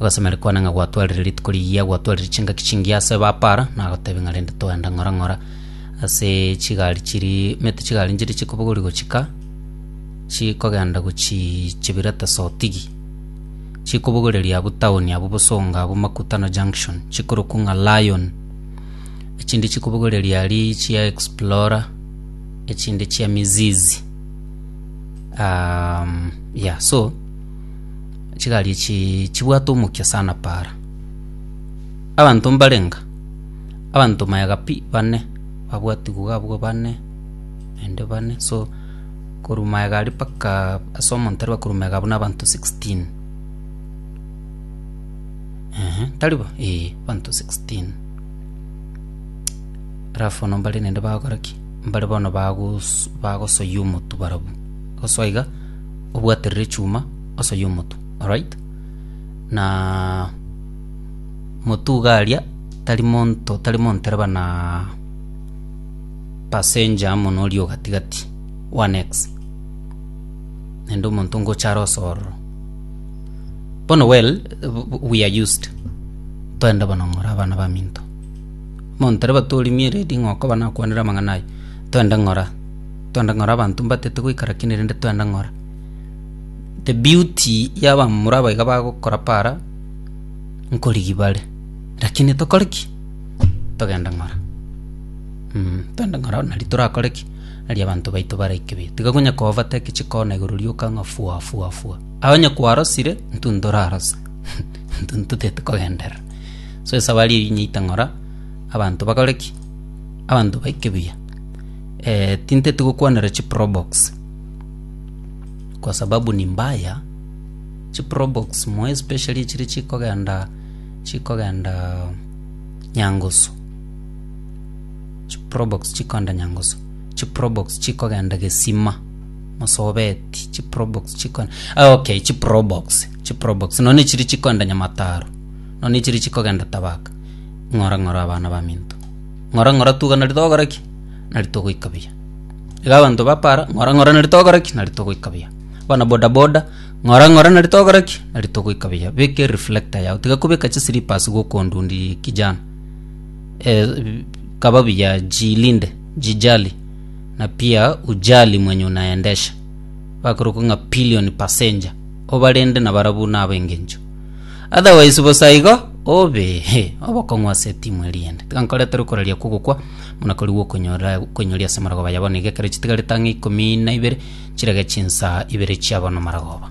Agasemeria kwane ng'a gwatwarire rituko rigiya, gwatwarire chingaki chingiya ase bapara, na agotebia ng'a rende togenda ng'ora ng'ora ase chigari chiri mete chigari nchiri chikobogori gochika chikogenda gochii chibira tesotigi. Chikobogoreria abwo town abwo bosongo abwo makutano junction chikorokwa ng'a lion. Echinde chikobogoreria aria chia explorer, echinde chia mizizi yeah so. Chigari echi chibwate omokia sana para. Abanto mbarenga, abanto mayega pi bane, babwatigwa iga abwo bane, naende bane so korwa mayega aria mpaka ase omonto aria bakorwa mayega abwo na abanto sixteen, eeh tari bo? eeh abanto sixteen. Alafu bono mbare naende bagokora ki? mbare bono bagosoa omotu barabwo, gosoa iga, obwaterere echuma. osoyo omotu alright na motu iga aria tari monto tari montereba na passenger amo na oria ogatigati one ex naende omonto ngocha are osoororo bono well we are used toende bono ng'ora abana baminto montereba torimie redi ng'a okoba nakwanire amang'ana aya toende ng'ora toende ng'ora abanto mbatete goika lakini rende toende ng'ora The beauty y'abamura aba iga bagokora para, nkorigi bare. Rakini tokore ki? Togende ng'ora. Mm, togende ng'ora nari torakore ki? Nari abanto baito baraike be. Tiga konya ko overtake chikona igoro rioka ng'a fua fua fua. Aye onye kwarosire, intwe ntorarose. Intwe ntotete kogenderera. So esabari eyio inyaite ng'ora, abanto bakore ki? Abanto baike buya. Tintete gokwanera chiprobox. kwa sababu ni mbaya chiprobox moe especially echiri chikogenda chikogenda nyangusu chiprobox chikogenda nyangusu chiprobox chikogenda gesima mosobeti chiprobox chiko ah okay chiprobox chiprobox nonya echiri chikogenda nyamataro nonya echiri chikogenda tabaka ng'ora ng'ora abana baminto ng'ora ng'ora tuga nari togora ki nari togoika buya. Iga abanto bapara, Ng'ora, ng'ora, nari togokora ki? Nari togoika buya. Abana boda boda, Ng'ora, ng'ora, nari togokora ki? Nari togoika buya. Beka ereflector yao, tiga kobeka chislippers gokondundirie kijana. Eh, kaba buya, jilinde, jijali, na pia ujali mwenye unaendesha. Bakorokwa ng'a pillion passenger, obarende nabarabwo nabe engencho. Otherwise bosa igo obe obokong'u ase etimu eria ende. Tiga nkoretere okoraria kwa ogokwa, buna korigwa okonyora okoinyori ase amaragoba ya bono, iga ekero chitigarete ang'e ikomi na ibere, chirege chinsa ibere chia bono maragoba.